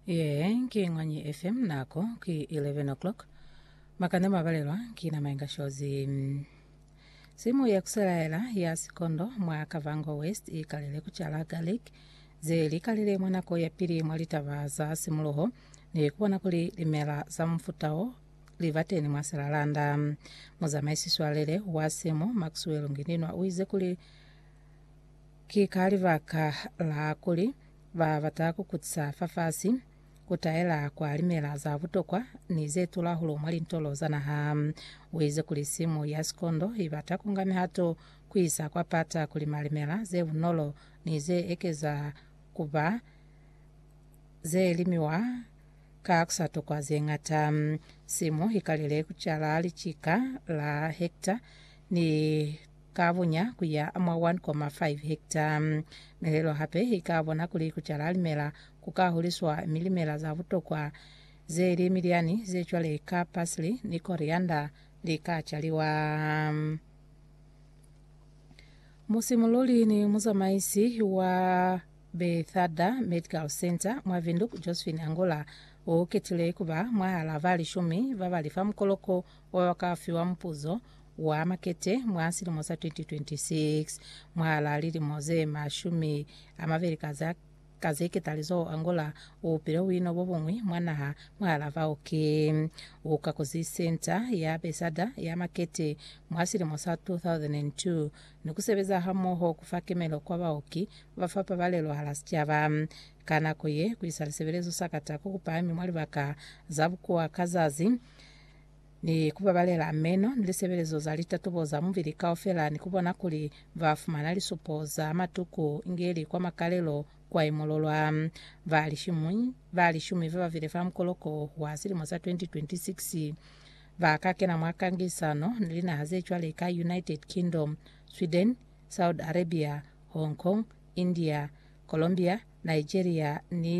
Yee, ki ng'wanyi efe? Nako ki 11 o'clock. Makane mabalelwa ki na mainga shozi. Simu ya kuselaela ya sikondo mwa Kavango West ikalile kucala garlic ze likalile mwa nako ya pili mwa litaba za simuluho ni kubona kuli limela za mufuta wo libateni mwa Selalanda. Muzamaisi swalele wa simu Maxwell Ngininwa uize kuli Ki ka libaka la kuli, ba bata ku kutisa fafasi, ku taela kwa limela za butokwa ni ze tula hulu mwa lintolo za naha. U ize kuli simu ya sikondo i bata ku nga mihato ku isa kwa pata ku lima limela ze bunolo ni ze ekeza ku ba ze limiwa ka ku sa tokwa ze ñata. Simu i kalile ku cala licika la hekta ni ka bunya ku ya mwa 1,5 hekta. Mihelo hape i ka bona kuli ku cala limela ku ka huliswa mi limela za butokwa ze li milyani ze cwale ka parsley ni coriander li ka caliwa. Musimululi ni muzamaisi wa Bethesda Medical Center mwa Windhoek, Josephine Angola, u ketile ku ba mwahal'a ba lishumi ba ba li fa mukoloko Ba ba ka fiwa mupuzo wa makete mwa silimo sa 2026 mwahalaa lilimo ze mashumi a mabeli ka za ka ze ketalizoho Angola u upile buino bo buñwi mwa naha mwahalaa bao ki u ka kuzi senta ya besada ya makete mwa silimo sa 2002 ni ku sebeza hamoho ku fa kemelo kwa baoki ba fa pabalelo hala sicaba ka nako ye ku isa lisebelezo sa katako ku pahami mwa libaka za bukuwa ka zazi ni ku babalela meno ni lisebelezo za litatubo za mubili kaufela ni ku bona kuli ba fumana lisupo za matuku inge li kwa makalelo kwa imololwa. Ba lishumi, ba lishumi ba babile fa mukoloko wa silimo sa 2026 ba ka kena mwa kangisano ni linaha ze cwale ka United Kingdom, Sweden, Saudi Arabia, Hong Kong, India, Colombia, Nigeria ni